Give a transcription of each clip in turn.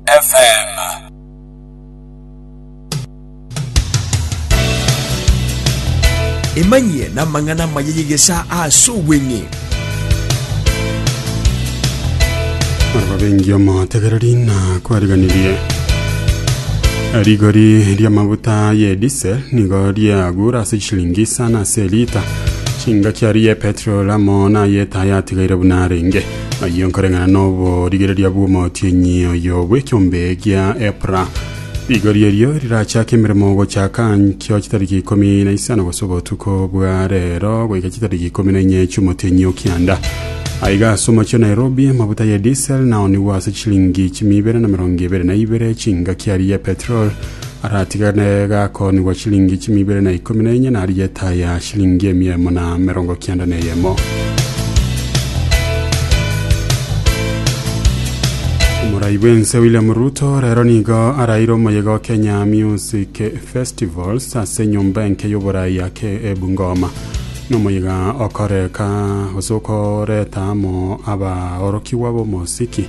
FM. Emanyie namang'ana amaya y'egesaa ase obweng'e. ababengi omotegereri na kwariganirie rigori ri'amaguta ye diesel nigo riagura ase chishilingi isano ase lita chingaki aria ye petrol amo na yeta yatigaire buna arenge Ayio nkoreng'ana n'oborigereria bw'omotienyi oyo bw'ekiombe gia epra. Rigori erio rirachake emeremo gochaka nkio chitariki ikomi na isano gose obotuko bwa rero goika chitariki ikomi na inye chi'omotienyi o kianda. Aiga ase omochie o Nairobi amafuta ye diesel nao nigwo ase chilingi chimi ibere na emerongo ebere na ibere chingaki aria ya petrol aratigane gakoonigwa chilingi chimia ibere na ikomi na enye, narigie etaai ya chilingi emia emo na emerongo kianda na eyemo. Omorai bw'ense William Ruto rero nigo araire omoyega o Kenya Music Festivals ase enyomba enke y'oborai ake e Bungoma. Nomoyega okoreka gose okoreta amo abaorokigwa b'omosiki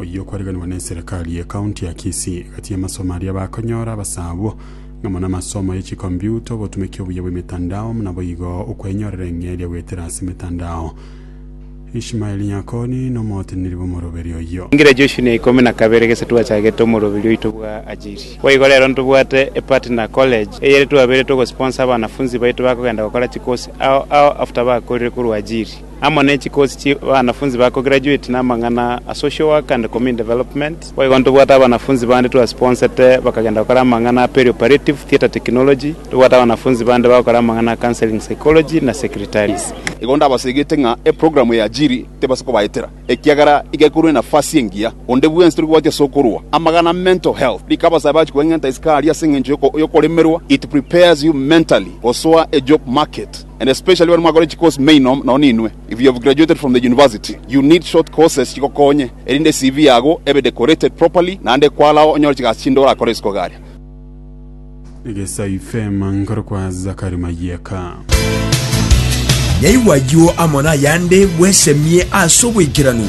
oyio okoriganigwa na eserekari ye county ya Kisii, egati y'amasomo aria bakonyora abasaa abwo, ng'amo na amasomo ye chikombiuta, obotumeki obuya bw'emetandao, buna boigo okwenyorera eng'eria goetera ase emetandao. Ishmael Nyakoni nomoteneneri bw'omoroberi oyio. Engira Joshua na ikomi na kabere gese twachagete omoroberi oito bwa Ajiri. Boigo rero ntobwate e partner college eyere twaberete ogo sponsor abanafunzi baito bakogenda gokora chikosi ao ao after bakorire korwa Ajiri. amo ne chikosi chi banafunzi ba kogirajueti namang'ana a social work and community development. Boigo ntobwate abanafunzi bande twasponnsete bakagenda gokora amang'ana a perioperative theatre technology, tobwate abanafunzi bande bagokora amang'ana a counseling psychology na secretaries. Igo ndabasegete ng'a eprogramu ya Ajiri tebasa kobaetera, ekiagera iga ekorwa enafasi engiya. Onde bwensi tori gobati ase okorwa amagana a mental health, rikabasabe achi kweng'enta isiko aria ase engencho yokoremerwa, it prepares you mentally gosoa a job market. and especially baria mwakore chicourse mainom nonya ninwe if you have graduated from the university you need short courses chigokonye erinde CV yago ebe decorated properly naende kwarao onyore chigasi chinde orakore isiko igaria. Egesa ifeema nkoro kwa Zakari Mayieka. Yaigwa ayio amo nayande bwesemie ase obwaikeranu.